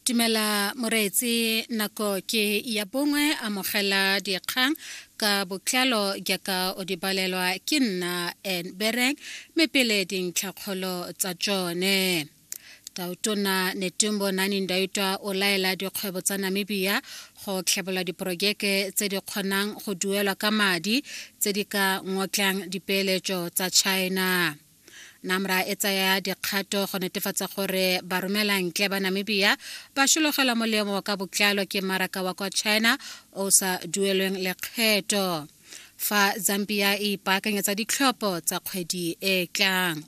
Tumela moreetsi nako ke ya bongwe amogela dikgang ka botlalo jaaka o di balelwa ke nna en bereng mme pele dintlhakgolo tsa tsone tautona netumbo nani ndaitwa o laela dikgwebo tsa namibia go tlhabolola diporojeke tse di kgonang go duelwa ka madi tse di ka ngotlang dipeeletso tsa china NAMRA e tsaya dikgato go netefatsa gore baromelantle ba Namibia ba shologelwa molemo ka botlalo ke mmaraka wa kwa China o sa duelweng lekgetho fa Zambia e ipaakanyetsa ditlhopho tsa kgwedi e e tlang.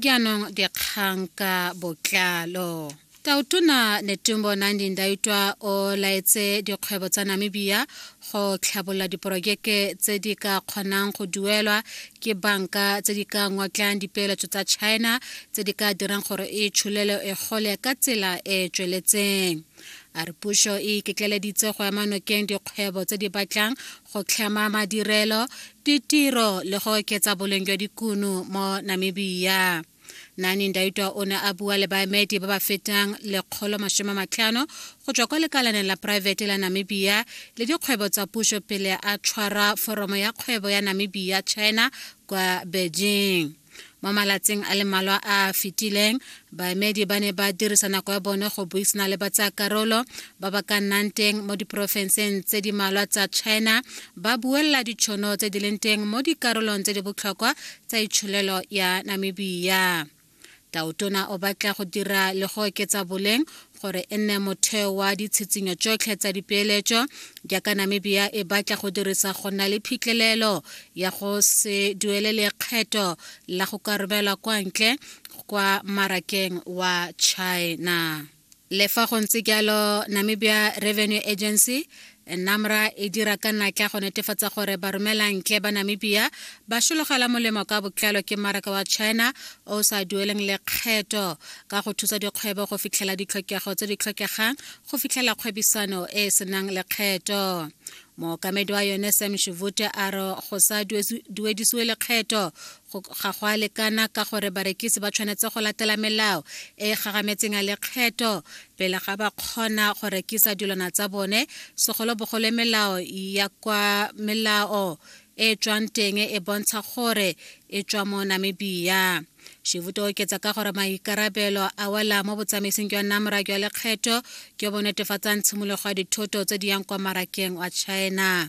Jaanong dikgang ka botlalo. Tautona Netumbo Nandi Ndaitwa o laetse dikgwebo tsa Namibia go tlhabolola diporojeke tse di ka kgonang go duelwa ke banka tse di ka ngotlang dipeeletso tsa China tse di ka dirang gore e tsholelo e gole ka tsela e e tsweletseng a re puso e iketleleditse go ema nokeng dikgwebo tse di batlang go tlhama madirelo ditiro le go oketsa boleng jwa dikuno mo namibia nani ndaitwa o ne a bua le baemedi ba ba fetang lekgolo masome matlhano go tswa kwa lekalaneng la poraefete la namibia le dikgwebo tsa puso pele a tshwara foromo ya kgwebo ya namibia china kwa beijing mo malatsing a le mmalwa a a fetileng baemedi ba ne ba dirisa nako ya bone go buisana le batsayakarolo ba ba ka nnang teng mo diporofenseng tse di malwa tsa china ba buelela ditšhono tse di leng teng mo dikarolong tse di botlhokwa tsa itsholelo ya namibia taotona o batla go dira le go oketsa boleng gore e nne motheo wa ditshitsinyo tsotlhe tsa dipeeletso jaaka namibia e batla go dirisa go nna le phitlhelelo ya go se duele lekgetho la go ka romelwa kwa ntle kwa marakeng wa china Le fa go ntse jalo, Namibia Revenue Agency NAMRA e dira ka natla go netefatsa gore baromelantle ba Namibia ba sologela molemo ka botlalo ke mmaraka wa China o sa dueleng lekgetho ka go thusa dikgwebo go fitlhela ditlhokego tse di tlhokegang go fitlhela kgwebisano e e senang lekgetho mookamedi wa yone sam shivute a re go sa duedisiwe lekgetho ga go a lekana ka gore barekisi ba tshwanetse go latela melao e e gagametseng ya lekgetho pele ga ba kgona go rekisa dilwana tsa bone segolobogolo melao ya kwa melao e tswang teng e bontsha gore e tswa mo namibia shivuto oketsa ka gore maikarabelo a wela mo botsamaising jwa namra jwa lekgetho jo bo netefatsang tshimologo ya dithoto tse di yang kwa marakeng wa china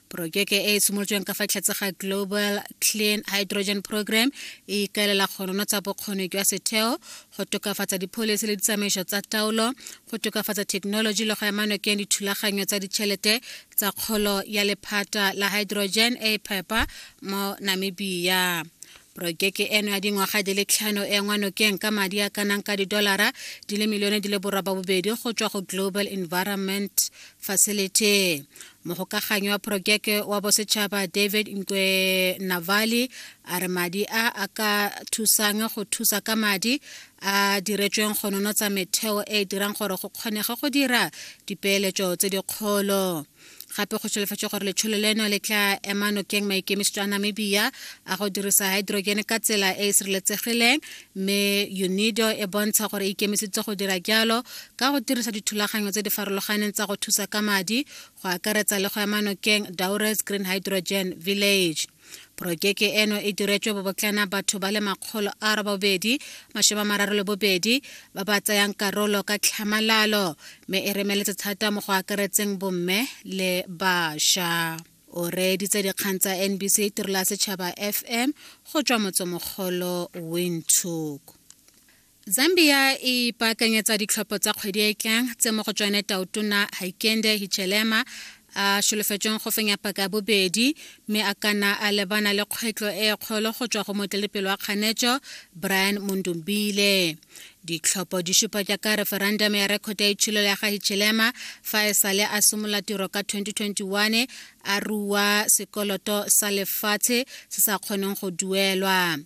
porojeke e e simolotsweng ka fa tlhatse ga global clean hydrogen program e ikaelela go nonotsa bokgoni jwa setheo go tokafatsa dipholisi le ditsamaiso tsa taolo go tokafatsa thekenoloji le go ema nokeng dithulaganyo tsa ditšhelete tsa kgolo ya lephata la hydrogen e e phepa mo namibia Porojeke eno ya dingwaga di le tlhano e engwa nokeng ka madi a kanang ka didolara di le milione di le borobabobedi go tswa go Global Environment Facility. Mogokaganyi wa porojeke wa bosetšhaba David Nkwe Navali a re madi a a ka thusang go thusa ka madi a diretsweng go nonotsa metheo e e dirang gore go kgonege go dira dipeeletso tse dikgolo. gape go tsholofetsa gore letsholo leno le tla ema nokeng maikemisetso a namibia a go dirisa hydrogen ka tsela e e sireletsegileng mme unido e bontsha gore e ikemisitse go dira jalo ka go dirisa dithulaganyo tse di farologaneng tsa go thusa ka madi go akaretsa le go ema nokeng daures green hydrogen village porokeke eno e diretswe bobotlana batho ba le makgolo a robobedi masome mararo le bobedi ba ba tsayang karolo ka tlhamalalo mme e remeletse thata mo go akaretseng bomme le bašwa o reeditse dikgang tsa nbc tirelo ya setšhaba fm go tswa motsemogolo windhoek Zambia e ipaakanyetsa ditlhopho tsa kgwedi e e tlang tse mo go tsone taotona Haikende Hichelema a solofetsweng go fenya paka ya bobedi mme a kana a lebana le kgwetlho e e kgolo go tswa go motelepelo wa kganetso Brian Mundumbile ditlhopho di supa jaaka referendum ya rekhota ya itshilelo ya ga Hichelema fa e sale a simolola tiro ka 2021 a rua sekoloto sa lefatshe se sa kgoneng go duelwa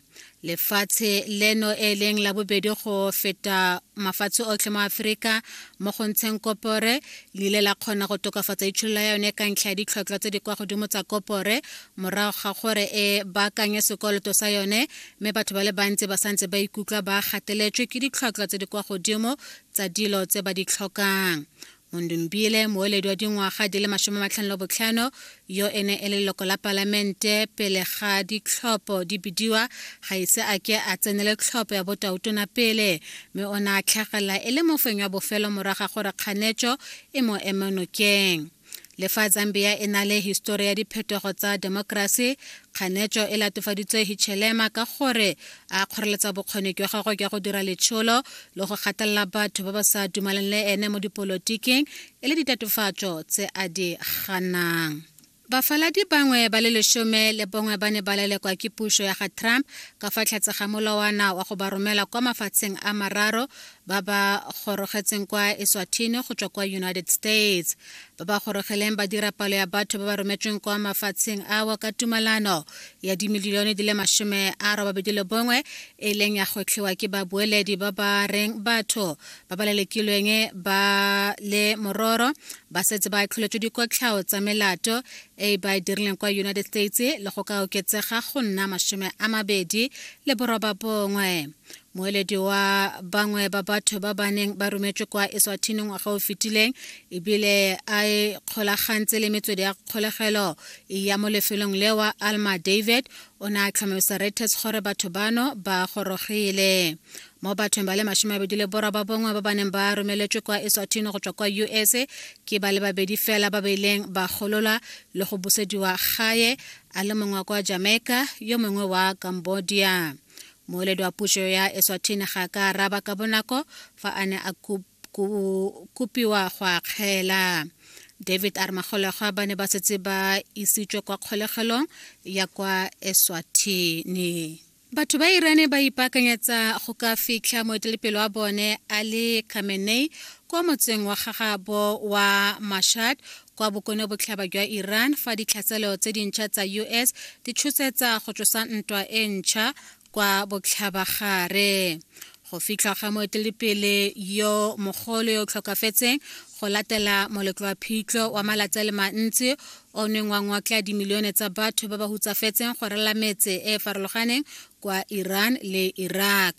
lefatshe leno e leng la bobedi go feta mafatshe otlhe mo aforika mo go ntsheng kopore le ile la kgona go tokafatsa itsholola ya yone ka ntlha ya ditlhotlhwa tse di kwa godimo tsa kopore morago ga gore e baakanye sekoloto sa yone mme batho ba le bantsi ba santse ba ikutlwa ba gateletswe ke ditlhotlhwa tse di kwa godimo tsa dilo tse ba di tlhokang mondombiele moeledi wa dingwaga di le masome matlhano le botlhano yo e ne e le leloko la palamente pele ga ditlhopho di bidiwa ga ise a ke a tsenele tlhopho ya botautona pele mme o ne a tlhagelela e le mofeng wa bofelo moraga gore kganetso e mo emenokeng le fa zambia e na le histori ya diphetogo tsa demokrasi kganetso e latofaditswe hichelema ka gore a kgoreletsa bokgoni jwa gagwe jwa go dira letsholo le go gatelela batho ba ba sa dumaleng le ene mo dipolotiking e le ditatofatso tse a di ganang bafaladi bangwe ba le lesome le bongwe ba ne ba lelekwa ke puso ya ga trump ka fa tlhatse ga molawana wa go ba romela kwa mafatsheng a mararo ba ba gorogetseng kwa eswathini go tswa kwa united states ba ba gorogeleng ba dira palo ya batho ba ba rometsweng kwa mafatsheng awa ka tumalano ya dimilione di le masome a robabedi le bongwe e leng ya gotlhiwa ke babueledi ba ba reng batho ba ba lelekilweng ba le mororo ba setse ba tlholetswe dikotlhao tsa melato e ba e dirileng kwa united states le go ka oketsega go nna masome a mabedi le boroba bongwe moeledi wa bangwe ba batho ba ba neng ba rometswe kwa eswathini ngwaga o fetileng ebile a e kgolagantse le metswedi ya kgolegelo ya mo lefelong lewa alma david o ne a tlhomamisa reuters gore batho bano ba gorogile mo bathong ba le masome abedi le bora ba bongwe ba ba neng ba romeletswe kwa eswathini go tswa kwa us ke ba le babedi fela ba ba ileng ba gololwa le go busediwa gae a le mongwe wa kwa jamaica yo mongwe wa cambodia moeledi wa puso ya eswatini ga ka araba ka bonako fa a ne a kopiwa go akgela david a re magolegwa ba ne ba setse ba isitswe kwa kgolegelong ya kwa eswatini batho ba irane ba ipaakanyetsa go ka fitlha moetelepele wa bone ali khamenei kwa motseng wa gagabo wa mashad kwa bokone botlhaba jwa iran fa ditlhatselo tse dintšha tsa us di tshosetsa go tlosa ntwa e ntšha kwa botlhabagare go fitlhwa ga moeteledipele yo mogolo yo o tlhokafetseng go latela moletlo wa phitlho wa malatsi a le mantsi o neng wa ngwakla dimilione tsa batho ba ba hutsafetseng go rela metse e e farologaneng kwa iran le iraq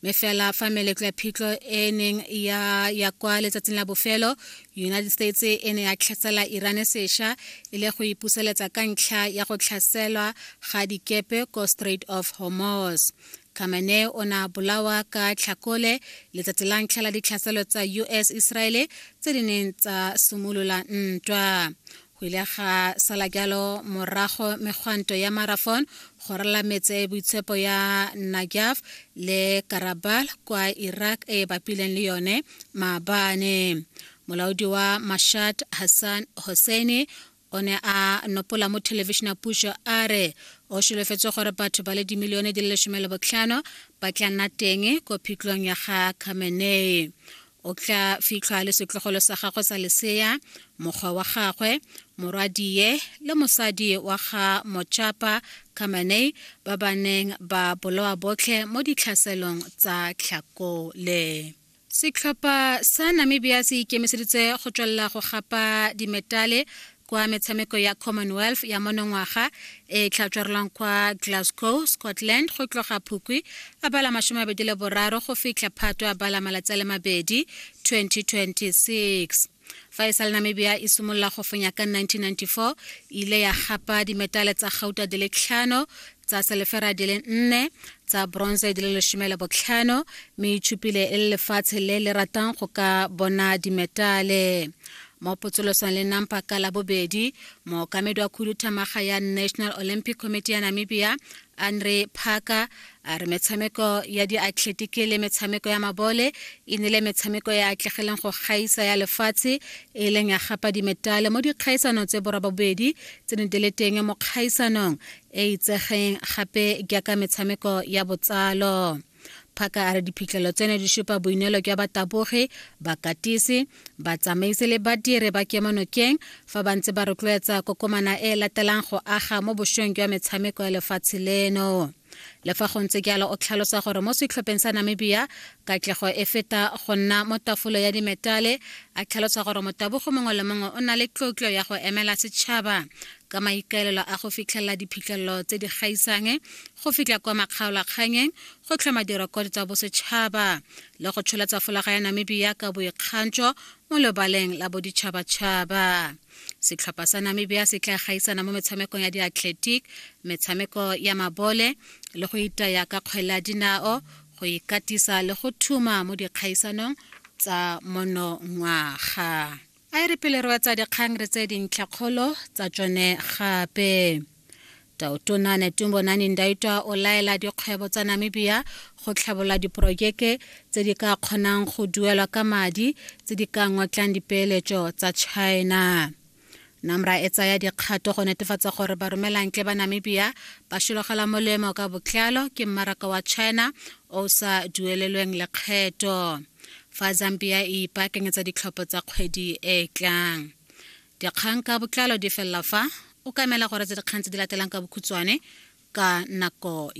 mme fela fa meletlo ya phitlho e neng ya ya kwa letsatsing la bofelo united states e ne ya tlhasela irane sesha e le go ipuseletsa ka ntlha ya go tlhaselwa ga dikepe ko strait of hormos Khamenei o ne a bolawa ka tlhakole letsatsi la ntlha la ditlhaselo tsa US Iseraele tse di neng tsa simolola ntwa. go ile ga sala jalo morago megwanto ya marafon go rala metse boitshepo ya najaf le karabal kwa iraq e bapileng le yone maabane molaodi wa mashat hassan hosseini o ne a nopola mo thelebišene ya pušo a re o šolofetse gore batho ba le dimilione di le lesome le botlhano ba tla nna teng ko phitlong ya ga khamenei o tla fitlhwa le setlogolo sa gagwe sa lesea mokgwa wa gagwe morwadie le mosadi wa ga mochapa kamanei ba ba neng ba bolowa botlhe mo ditlhaselong tsa tlhakole setlhopha sa namibia se ikemiseditse go tswelela go gapa dimetale kwa metshameko ya commonwealth ya monongwaga e e tlhatswerelwang kwa glasgow scotland go tloga phukwi a bala masome mabedi le boraro go fitlha phato a bala malatsi a le mabedi 2026 fa e sale namibia e simolola go fenya ka 1994 ile ya gapa dimetale tsa gauta di le tlhano tsa selefera di le nne tsa bronze di le lesome le botlhano mme itshupile e le lefatshe le le ratang go ka bona dimetale mo potsolosong le nampa ka la bobedi mookamedi wa khuduthamaga ya national olympic committee ya namibia andre parker a re metshameko ya diathletiki le metshameko ya mabole e nile metshameko e atlegileng go gaisa ya lefatshe e leng ya gapa dimetale mo dikgaisano tse borwa bobedi tse ne di le teng mo kgaisanong e itsegeng gape jaaka metshameko ya botsalo phaka a re diphitlhelo tseno di supa boineelo jwa batabogi bakatisi batsamaisi le badiri ba kemonokeng fa ba ntse ba rotloetsa kokomana e e latelang go aga mo bošweng jwa metshameko ya lefatshe leno le fa go ntse jalo o tlhalosa gore mo setlhopheng sa namibia katlego e feta go nna mo tafolo ya dimetale a tlhalosa gore motabogo mongwe le mongwe o na le tlotlo ya go emela setšhaba ka maikaelelo a go fitlhelela diphitlhelelo tse di gaisang go fitlha kwa makgaolakganyeng go tlhoma direkoto tsa bosetšhaba le go tsholetsa folaga ya namibia ka boikgantšo mo lebaleng la boditšhabatšhaba setlhopha sa namibia se tla gaisana mo metshamekong ya diathletic metshameko ya mabole le go itaya ka kgwele ya dinao go ikatisa le go thuma mo dikgaisanong tsa monongwaga A e re pele re wetsa dikgang re tse dintlhakgolo tsa tsone gape taotona netumbo nani ndaitwa o laela dikgwebo tsa namibia go tlhabolola diporojeke tse di ka kgonang go duelwa ka madi tse di ka ngotlang dipeeletso tsa china namra e tsaya dikgato go netefatsa gore baromelantle ba namibia ba šologela molemo ka botlalo ke mmaraka wa china o sa duelelweng lekgetho fa zambia e ipaakanyetsa ditlhopho tsa kgwedi e e tlang dikgang ka botlalo di felela fa o kamela gore tse dikgang tse di latelang ka bokhutswane ka nako